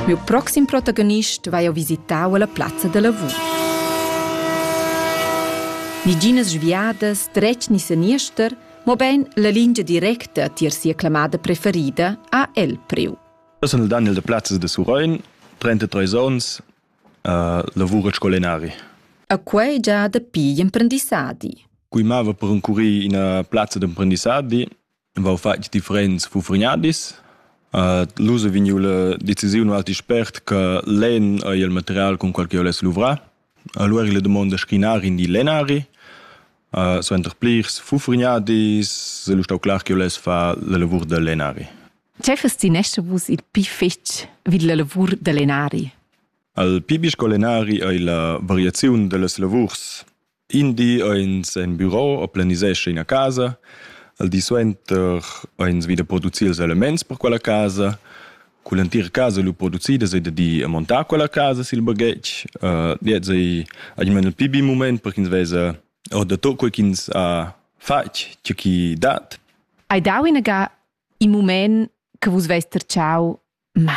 Miu proxim protagonist vai ho visitau alla plazza da lavur. Niginas sviadas, dretg ni seniester, mobein la lingia directa tier sia clamada preferida ha el priu. Eu sun il Daniel de Plazzas de Surein, 33 ons, uh, lavur scolenari. A quei già dapi gl'emprendissadi. Cui mava per incurir ina plazza d'emprendissadi, vau fatg differents fufregnadis. Uh, L'us è vegniu la decisiun alti spert che l'en ei il material con qual che oless luvrar. Allora le domande schinar in di lenari, uh, suenter plirs fufregnadis, el stau clar che oless fa la lavur da lenari. Tgei fes ti nesce vus il pi fetg vid la lavur da lenari? Al pi bisco lenari ei la variaziun dellas lavurs In di eins en büro o planisescha ina casa, al di suenter eins vi da producir ils elements per quella casa. Cun l'entira casa lu producida sei da dir e montar quella casa sil baghetg. Uh, gliez ei almeno il pi bi mument per ch'ins vesa or da tot quei ch'ins ha fatg, tgeu chi dat. Hai dau inaga in mument che vus veis tertschau, ma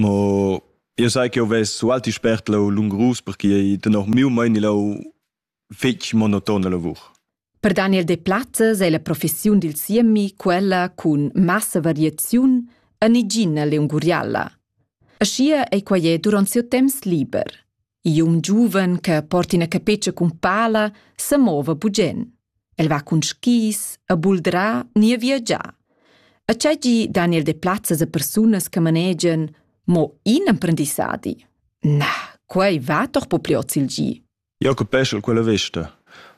Mo io sai che ho vess sualti spert lau lungrus perché tenor miu meini lau fetg monotona lavur. Per Daniel Deplazes è la professiun dil siemi quella cun massa variaziun en igina leunguriala. Aschia ei quei duront siu temps liber. E un giuven che porta ina capetscha cun pala se mova bugen. El va cun skis, a buldra ni a viagiar. A tgei gi Daniel de plazzas a persunas che manegian mo in emprendissadi. Na, quei va doch po pli oz il gi. Jacob Peschel quella vesta.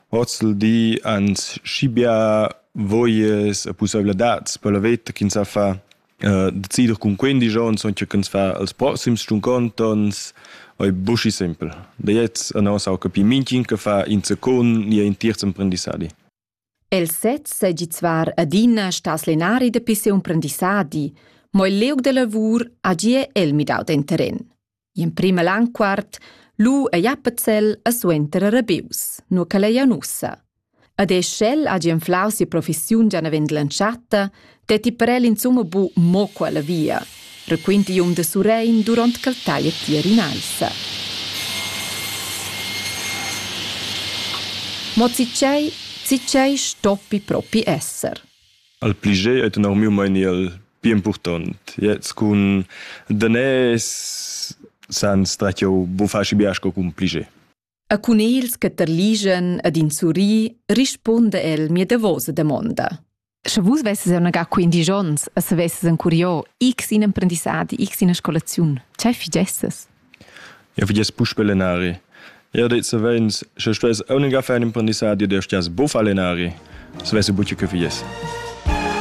Oz il di ans schi bia voies e pussaivladads per la veta ch'ins sa fa Uh, decider cun quindici onns che can fa als proxims stunconts onns è buschi simpel. Da jetzt annos au capi minchin che fa in secund ni in terz emprendissadi. El sez segi zvar adina stas lenari de pisse emprendissadi, mo il leug de lavur agie el midau den terren. In prima lanquart lu ei Appenzell e suenter rebius, nur che ei ussa. Ed e sch'el hagi enflau si professiun già navend l'entschatta, detti per el insumma bu mo quella via, requinti um de Surein duront ch'el taglia tier in alza. Mo zicei, zicei stoppi propi esser. al pli gei ei tenor miu meini el pli impurtont. Jetzt cun danès san stretgau bufaci bia sco cun pli gei. A cun ils che terligen ed in surri risponda el mia davosa damonda. Sche vus vesses annegà quindisch onns e savesses encuriò x in emprendissadi, x ina scolaziun, tgei figesses? Jau vi gest puspè lenari. Jau det savens, sche stuess aunc far in imprendissadi da stias buffar lenari. Savessi buca che fies.